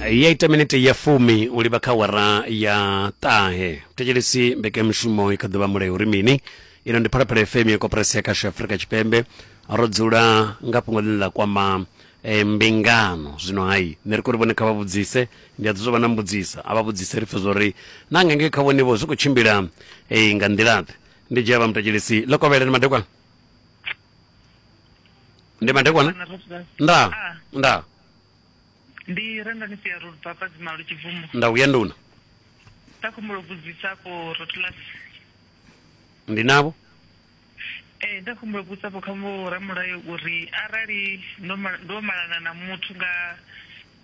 ya ita minete ya fumi u livha kha wara ya ṱahe thetshelesi mbekanyamushumo i kha ḓuvha mulayo uri mini ino ndi phalaphala fm ya koporasi ya kasho afurika tshipembe ro dzula nga fhungo ḽine ḽa kwama eh, mbingano zwino hai nṋe ri kori vhone kha vha vhudzise ndi a ḓi zwo vha na mbudzisa a vha vhudzise ri pfe zwori na nga ngei kha vhonevho zwi khou tshimbila eh, nga nḓilaḓe ndi dzhia vha mutetshelesi ḽo kovheleni madekwana ndi madekwana na rasidas nda Ah. nda ndi rendani sia ro baba dzima lu tshibvumo nda uya nduna ta khumbulo budzisa ko rotulas ndi navho eh nda khumbulo budzisa ko kha mu ramulayo uri arali ndo ma- ndo malana na muthu nga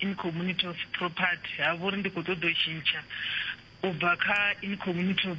in community of property ha vhori ndi kho ṱoḓa u tshintsha u bva kha in community of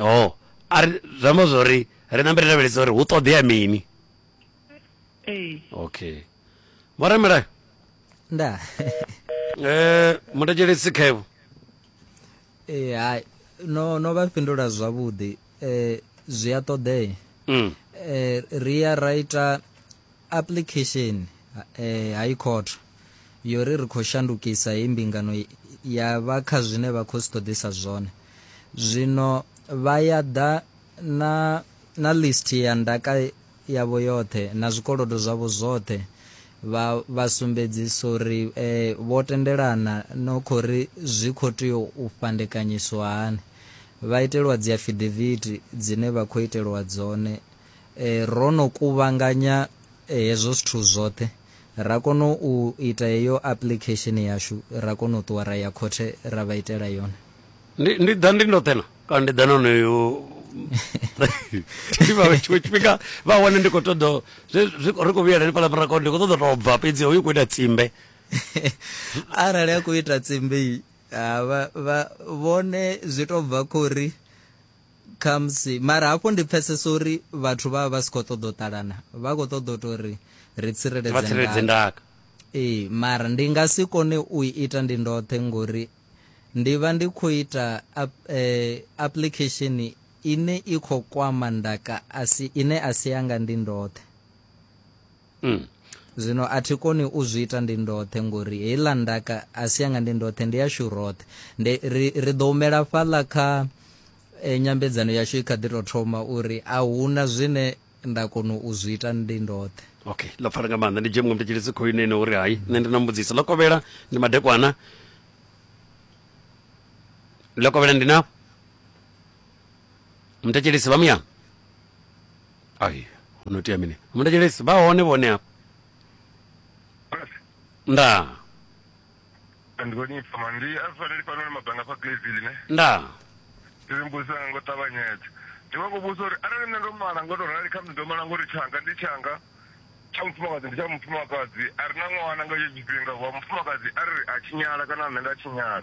oh ari zwi amba zwo ri ri nambe ri lavhelesa uri hu ṱoḓea mini ee okay vhoramelayo nda eh mutekelesi khaevo eh hai no no vha fhindula zwavhuḓi eh zwi a ṱoḓea mm. eh ri ya ra ita Apuḽikhesheni ha ikhotho yo ri ri khou shandukisa heyi mbingano ya vha kha zwine vha khou zwi ṱoḓisa zwone. Zwino vha ya ḓa na, na list ya ndaka yavho yoṱhe na zwikolodo zwavho zwoṱhe vha, vha sumbedzisa uri e, vho tendelana no khou ri zwi khou tea u fhandekanyiswa hani. Vha itelwa dziafidavithi dzine vha khou itelwa dzone E, ro no kuvhanganya hezwo zwithu zwoṱhe, ra kona u ita heyo application yashu, ra kona u ṱuwa ra ya khothe ra vha itela yone. Ndi, ndi ḓa ndi ndoṱhe na? Kana ndi ḓa na onoyo tshiṅwe tshifhinga vha wane ndi khou ṱoḓa ri khou vhuyela hanefhaḽa murako ndi khou ṱoḓa tou bva fhedzi hoyu khou ita tsimbe arali a khou ita tsimbe vha vhone zwi tou bva khou ri Khamusi. Mara hafhu ndi pfesesa uri vhathu vha vha vha si khou ṱoḓa u ṱalana. Vha khou ṱoḓa u tou ri ri tsireledze ndaka. ndaka. Ee, mara ndi nga si kone u i ita ndi ndoṱhe ngori ndi vha ndi khou ita ap, eh, application ine i khou kwama ndaka asi, ine a si yanga ndi ndoṱhe. Mm. zwino a thi koni u zwi ita ndi ndoṱhe ngori heiḽa ndaka a si yanga ndi ndoṱhe ndi yashu roṱhe ndi ri, ri ḓo humela fhaḽa kha e, nyambedzano yashu i kha ḓi tou thoma uri a huna zwine nda kona u zwi ita ndi ndoṱhe okay ḽo pfala nga maanḓa ndi dzhie muṅwe mutetshelesi khou ine ine uri hai nṋe ndi na mbudziso ḽo kovhela ndi madekwana ḽo kovhela ndi na mutetshelesi vha muya ai hu no tea mini muthetshelesi vha hone vhone hafha ndaa ndi khou ni pfama ndi a zwi faneli fhanoni mabanga fha glaville ne ndaa ndi ri mbudzisa nga ngo ṱavhanyedza ndi vha khou vhudzisa uri arali nṋe ndo mala ngo to rali khamusi ndo mala ngori tshanga ndi tshanga tsha mufumakadzi ndi tsha mufumakadzi a re na ṅwana nga etsho tshifhinga wa mufumakadzi a ri a tshinyala kana nṋe nda tshinyala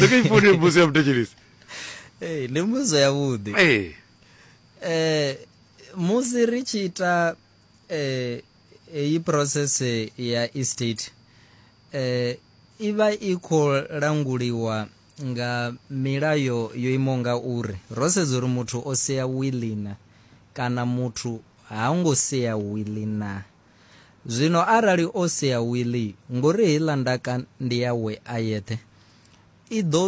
Saka ifone mbuzi ya mutechelisi. Hey, ndi mbuzo yavhuḓi Hey. eh musi ri tshi ita eh iyi process eh, ya estate eh i vha i khou languliwa nga milayo yo imaho nga uri ro sedza uri muthu o sea wili na kana muthu ha ngo sea wili na Zwino arali o sea wili, ngori heiḽa ndaka ndi yawe a yeṱhe, i ḓo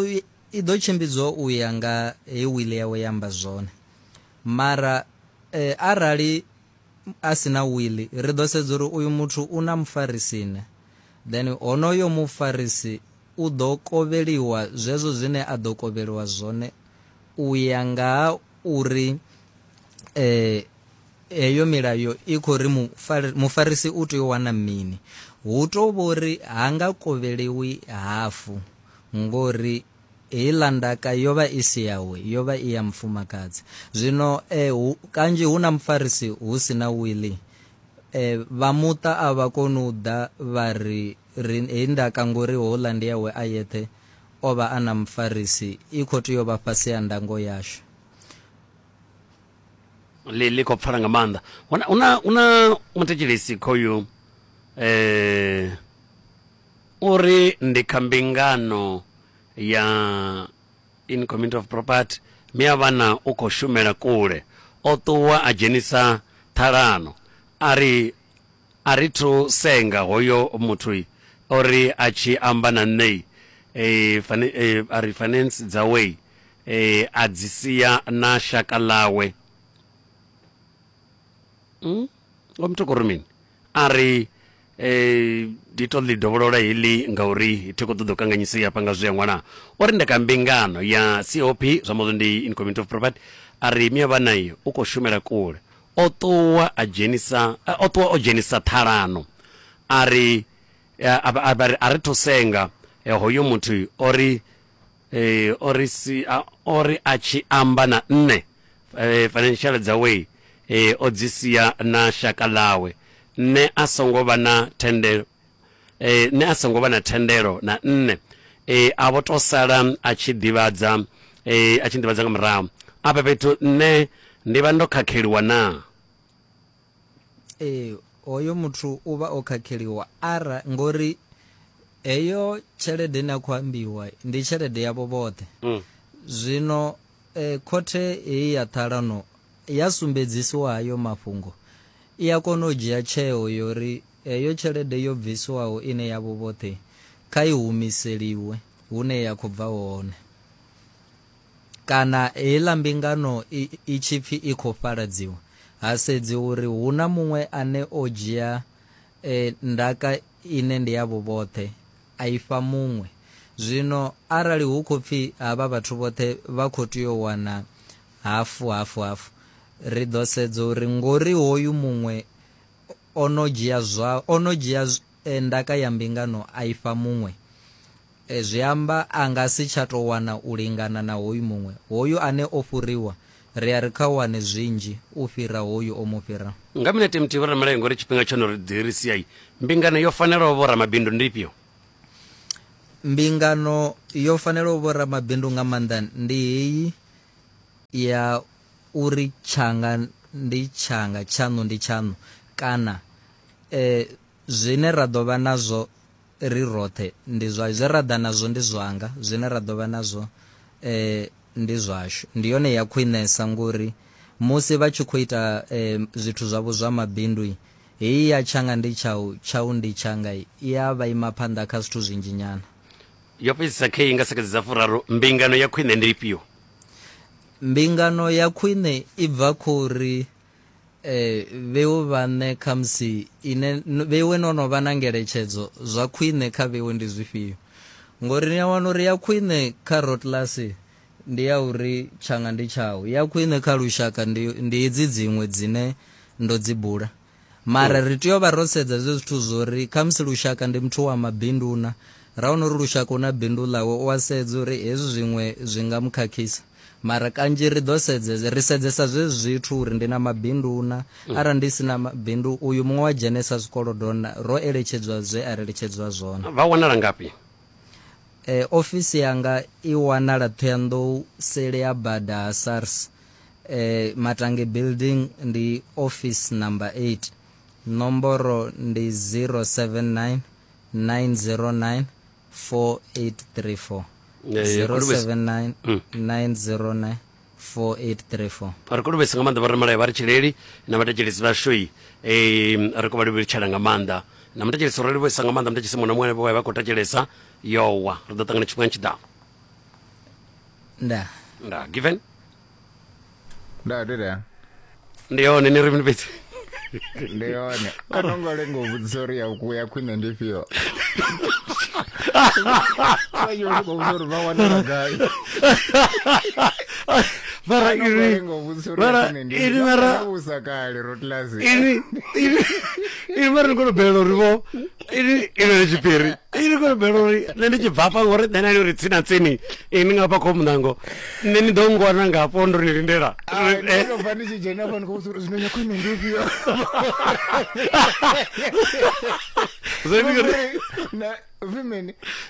i ḓo tshimbidzwa u ya nga he wili yawe ya amba zwone. Mara e, arali a si na wili, ri ḓo sedza uri uyu muthu u na mufarisi ne, then honoyo mufarisi u ḓo kovheliwa zwezwo zwine a ḓo kovheliwa zwone u ya nga ha uri e, eyo milayo i khou ri mufari- mufarisi u tea u wana mini hu tou vhori ha nga kovheliwi hafu ngori heiḽa ndaka yo vha i si yawe yo vha i ya mufumakadzi zwino eh, hu, kanzhi hu na mufarisi hu si na wili eh, vha muṱa a vha koni u ḓa vha ri ri- heyi ndaka ngori houḽa ndi yawe a yeṱhe o vha a na mufarisi i khou tea u vha fhasi ha ndango yashu ḽi ḽi khou pfala nga maanḓa una una una muthetshelesi khoyu eh uri ndi kha mbingano ya in community of property mi a vhana u khou shumela kule o ṱuwa a dzhenisa ṱhalano a ri A ri thu senga hoyo muthu o ri a tshi amba na nṋe a ri finance dzawe a dzi sia na shaka ḽawe. Vho Mthokoro mini? A ri ndi tou ḽi dovholola heḽi ngauri thi khou ṱoḓa u kanganyisea hafha nga zwe a ṅwala. O ri nda kha mbingano ya COP, zwi amba uri ndi in Community of Property, a ri Miavhana u khou shumela kule. o ṱuwa a dzhenisa eh, o ṱuwa o dzhenisa ṱhalano a ri eh, a vha- a vha ri a ri thu senga eh, hoyo muthu o ri eh, o ri si a- o ri a tshi amba na nṋe eh, financial dzawe eh, o dzi sia na shaka ḽawe nṋe a songo vha na thende e, nṋe a songo vha na thendelo na nṋe e, a vho to sala a tshi ḓivhadza e, a tshi ḓivhadza nga murahu afha fhethu nṋe ndi vha ndo khakheliwa na ee hoyo muthu u vha o khakheliwa ara ngori heyo tshelede ine a khou ambiwa ndi tshelede yavho vhoṱhe mm. zwino eh, khothe heyi ya ṱhalano ya sumbedzisiwa hayo mafhungo i a kona u dzhia tsheo yori Heyo tshelede yo bviswaho ine yavho vhoṱhe kha i humiseliwe hune ya khou bva hone. Kana heiḽa mbingano i tshi pfi i khou fhaladziwa, ha sedziwa uri hu na muṅwe ane o dzhia ndaka ine ndi yavho vhoṱhe a i fha muṅwe. Zwino arali hu khou pfi havha vhathu vhoṱhe vha khou tea u wana hafu, hafu, hafu, ri ḓo sedza uri ngori hoyu muṅwe o no dzhia zwa o no dzhia eh, ndaka ya mbingano a ifha muṅwe eh, zwi amba a nga si tsha tou wana u lingana na hoyu muṅwe hoyu ane o fhuriwa ri a ri kha wane zwinzhi u fhira hoyu o mu fhira Nga minete muthihi vho ramalayo ngori tshifhinga tsho no ri ḓi ri siai. Mbingano yo fanelaho vho ramabindu ndi ifhio? mbingano yo fanelaho vho ramabindu nga maanḓa ndi heyi ya uri tshanga ndi tshanga, tshaṋu ndi tshaṋu, kana e, zwine ra ḓo vha nazwo ri roṱhe ndi zwa zwe ra ḓa nazwo ndi zwanga, zwine ra ḓo vha nazwo e, ndi zwashu. Ndi yone ya khwinesa ngori musi vha tshi khou ita e, zwithu zwavho zwa mabindu heyi ya tshanga ndi tshau, tshau ndi tshanga i a vha ima phanḓa kha zwithu zwinzhi nyana. Yo fhedzisa khe i nga sekedza dza furaru, mbingano ya khwine ndi ifhio? mbingano ya khwine i bva khou ri eh, vheu vhaṋe khamusi ine vhewe no no vha na ngeletshedzo zwa khwine kha vhewe ndi zwifhio ngori ni a wana uri ya khwine kha rotlasi ndi ya uri tshanga ndi tshau ya khwine kha lushaka ndi hedzi dziṅwe dzine ndo dzi bula mara ri tea u vha ro sedza zwe zwithu zwo ri khamusi lushaka ndi muthu wa mabindu na ra wana uri lushaka una bindu ḽawe u a sedza uri hezwi zwiṅwe zwi nga mu khakhisa mara kanzhi ri ḓo sedzesa ri sedzesa zwe zwithu uri ndi na mabindu na mm. arali ndi si na mabindu uyu muṅwe wa dzhenesa zwikolodo na ro eletshedzwa zwe a ri eletshedzwa zwone vha wanala ngafhi eh, ofisi yanga i wanala thohoyandou sele ya bada ha sars Eh, Matange Building ndi office number 8. Nomboro ndi 079 909 4834. Eh, Kolobesi. 079 Mm. 909 4834. ri khou luvhesa nga maanḓa vha ramalayo vha ri tshileli na vhathetshelesi vhashoi um ri khou vha livhelitshela nga maanḓa na muthetshelesi ro livhesa nga maanḓa muthetshelesi muṅwe na muṅwe vha vha khou thetshelesa yowa ri ḓo ṱangana tshifhinga tshiḓaho Nda. nda given nda ndi ri ndi yone ni ri mini fhedzi ndi yone a no ngo lenga u vhudzisa uri ya ku ya khwine ndi fhio sanyo ndi khou vhudzisa uri vha wanela gai mara a no ngo ini lenga u vhudzisa uri ya mara khwine ndi ini mara vhusa kale rotlasi ini ini ini mara ni kone u bvelela uri vho ini ino ni tshipiri ini ko bela uri nṋe ndi tshi bva hafha ngori nṋe nani uri tsina tsini ini nga hafha kho munango nṋe ni ḓo ngwana nga hafho ndo ni lindela bva ndi tshi dzhena hafha ndi khou vhudza uri zwino nyako ine ndi ufhio zwi mini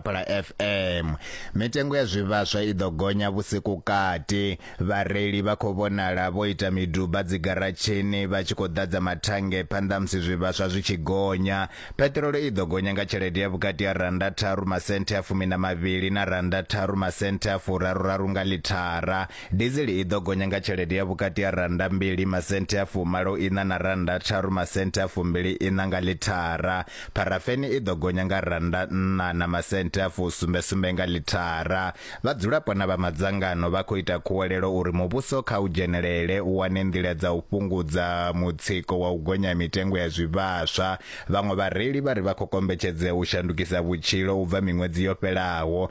Phala FM. Mitengo ya zwivhaswa i ḓo gonya vhusiku kati. Vhareili vha khou vhonala vho ita miduba dzigaratshini vha tshi khou ḓadza mathange phanḓa musi zwivhaswa zwi tshi gonya. Peṱirolo i ḓo gonya nga tshelede ya vhukati ha rannda tharu masenthe a fumi na mavhili na rannda tharu masenthe a furaruraru nga ḽithara. Dizili i ḓo gonya nga tshelede ya vhukati ha rannda mbili masenthe a fumalo iṋa na rannda tharu masenthe a fumbili iṋa nga ḽithara. Pharafeni i ḓo gonya nga rannda nṋa na masenthe a fusumbe-sumbe nga ḽithara. Vhadzulapo na vha madzangano vha khou ita khuwelelo uri muvhuso kha u dzhenelele u wane nḓila dza u fhungudza mutsiko wa u gonya ha mitengo ya zwivhaswa. Vhaṅwe vhareili vha ri vha khou kombetshedzea u shandukisa vhutshilo u bva miṅwedzi yo fhelaho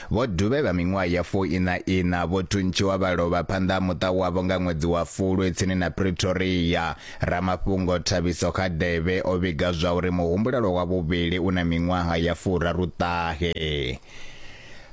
Vho Dube vha miṅwaha ya fuiṋa-iṋa vho thuntshiwa vha lovha phanḓa ha muṱa wavho nga ṅwedzi wa Fulwi tsini na Pretoria. Ramafhungo Thabiso Kgadebe o vhiga zwauri muhumbulelwa wa vhuvhili u na miṅwaha ya furaruṱahe.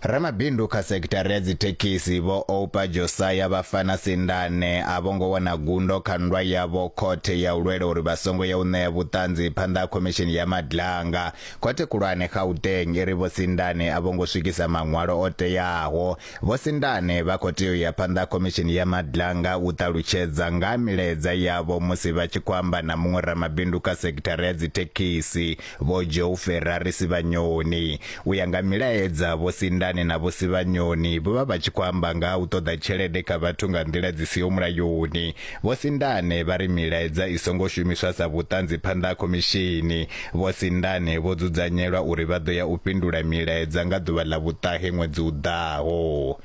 Ramabindu kha sekithara ya dzithekhisi vho Oupa Josaya vha fana sindane a vho ngo wana gundo kha nndwa yavho khothe ya u lwela uri vha songo ya u ṋea vhuṱanzi phanḓa ha khomishini ya Madlanga Khothe Khulwane Gauteng i ri Vho Sindane a vho ngo swikisa maṅwalo o teaho. Vho Sindane vha khou tea u ya phanḓa ha Khomishini ya Madlanga u ṱalutshedza nga ha milaedza yavho musi vha tshi khou amba na muṅwe ramabindu kha sekithara ya dzithekhisi, Vho Joe Ferrari Sivhanyoni. U ya nga milaedza, Vho Sindane na Vho Sivhanyoni vho vha vha tshi khou amba nga ha u ṱoḓa tshelede kha vhathu nga nḓila dzi siho mulayoni. Vho Sindane vha ri milaedza i songo shumiswa sa vhuṱanzi phanḓa ha khomishini. Vho Sindane vho dzudzanyelwa uri vha ḓo ya u fhindula milaedza nga ḓuvha ḽa vhuṱahe ṅwedzi u ḓaho.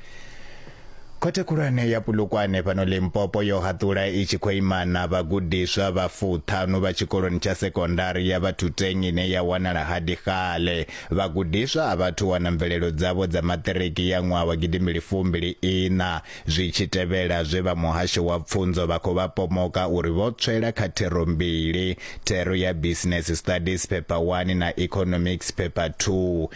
Khothe khulwane ya Polokwane fhano Limpopo yo haṱula i tshi khou imana vhagudiswa vha fuṱhanu vha tshikoloni tsha sekondari ya Bathuteng ine ya wanala Hadikgale. Vhagudiswa a vhathu wana mvelelo dzavho dza maṱiriki ya ṅwaha wa gidimbili fumbili iṋa. zwi tshi tevhela zwe vha muhasho wa pfunzo vha khou vha pomoka uri vho tswela kha thero mbili, thero ya Business Studies phepha 1 na Economics phepha 2.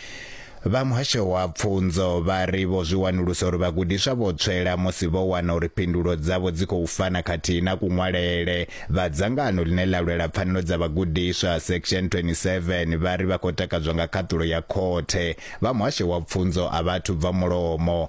Vha muhasho wa pfunzo vha ri vho zwi wanulusa uri vhagudiswa vho tswela musi vho wana uri phindulo dzavho dzi khou fana khathihi na kuṅwalele. Vha dzangano ḽine ḽa lwela pfanelo dza vhagudiswa section 27 vha ri vha khou takadzwa nga khaṱulo ya khothe. Vha muhasho wa pfunzo a vhathu bva mulomo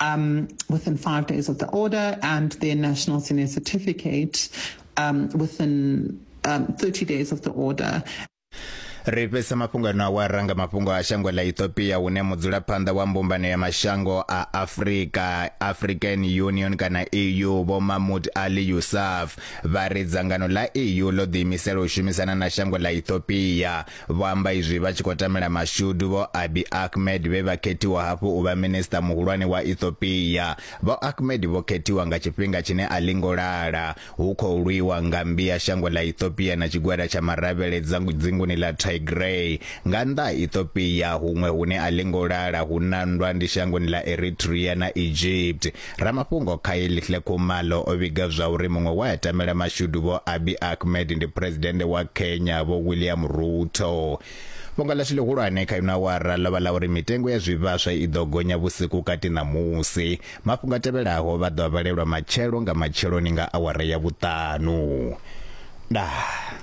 um, within five days of the order and their national senior certificate um, within um, 30 days of the order. ri fhesa mafhungo ano a wa ranga mafhungo a shango ḽa ethiopia hune mudzulaphanḓa wa mbumbano ya mashango a afrika african union kana eu vho mahmud ali yusuf vha ri dzangano ḽa eu ḽo ḓiimisela u shumisana na shango ḽa ethiopia Vho amba izwi vha tshi khou tamela mashudu Vho Abiy Ahmed vhe vha khethiwa hafhu u vha Minisiṱa Muhulwane wa Ethiopia. Vho Ahmed vho khethiwa nga tshifhinga tshine a ḽi ngo lala hu khou lwiwa nga mmbi ya shango ḽa Ethiopia na tshigwada tsha maravhele dzinguni ḽa Tigray. Nga nnḓa ha Ethiopia, huṅwe hune a ḽi ngo lala hu na nndwa ndi shangoni ḽa Eritrea na Egypt. Ramafhungo Kyle Khumalo o vhiga zwa uri muṅwe we a tamela mashudu Vho Abiy Ahmed ndi Phresidennde wa Kenya Vho William Ruto. Fhungo ḽashu ḽihulwane kha ino awara ḽo vha ḽa uri mitengo ya zwivhaswa i ḓo gonya vhusiku kati ṋamusi. Mafhungo a tevhelaho vha ḓo a vhalelwa matshelo nga matsheloni nga awara ya vhuṱanu. Ndaa.